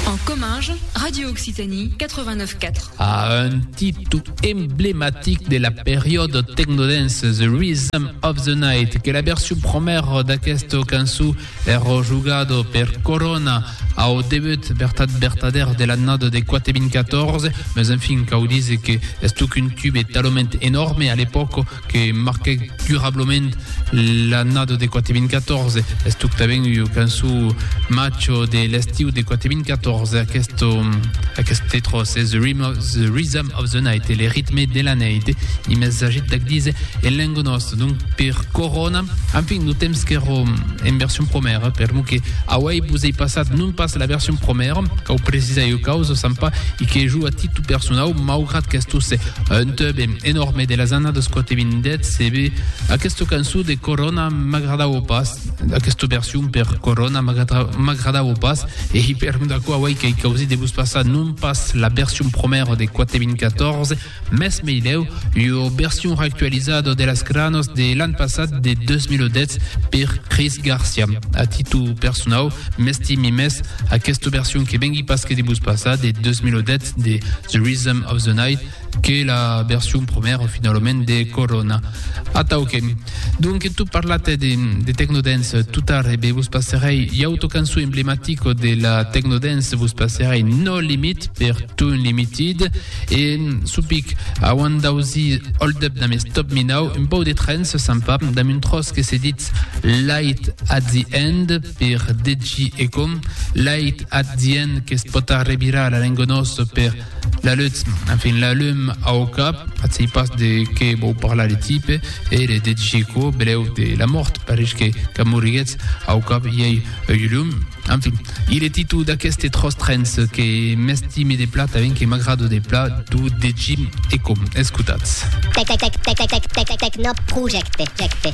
En Comminges, Radio Occitanie 89 4. A un titu emblematic de la periòda tecnodance The Rhythm of the Night que la version promèra d'aquesta cançó èra jogada per Corona au debut vertat vertadèr de l'annada de 4.014, mas enfin cau díser que estoc un tube talament enòrme a l'epòca que marquèc durablament l'annada de 4014, es totament ua cançó macho de l'estiu de 4014, aquest, aquest titre es the rhythm, of, the rhythm of the night, le ritme de la neit, i més agit d'ac dizer en lenga nòsta, donc per Corona, enfin, lo temps qu'èra en version promèra, per lo que auei vos ei passat non pas la version promèra, cau precisar ua causa, Sampa, i que jo a titu personau, maugrat qu'estó se Un tube enòrme de las annadas 4.000 CB. Aquesta cançó de Corona m'agradava pas, aquesta version per Corona m'agradava pas, e i per d'aquò avui que i causi de vos passar non pas la version promèra de 4.014, mès meilèu ua version reactualizada de las granas de l'an passat de 2010 per Chris Garcia. A títol personau, m'estimi mès aquesta version que vengui pas que de vos passar de 2010, de The Rhythm of the Night que la version première finalment de Corona. Atauquem. Donc tu parlat de, de Tecnodance tout tard, e eh vos passerei l'auto cançó emblematico de la Tecnodance, vos passerei No Limit per Tune Limited, e mm, supic, a one dausi Hold Up dame Stop Me Now, un pau de trens sympa, dame un tros que se dit Light at the End, per deci e com l'ait at dient que's pota revirar a l'engonós per la lutz, enfin la lum au cap, at sei pas de qué vau parlar le tipe, e le deci quo beleu de la mort, pareix que qu'a moriguetz au cap i ei ui lum, enfin, il e titu d'aqueste tros trens que m'estime de plat aven que m'agrado de plat d'u deci e com, escotatz. Tecnoprojecte.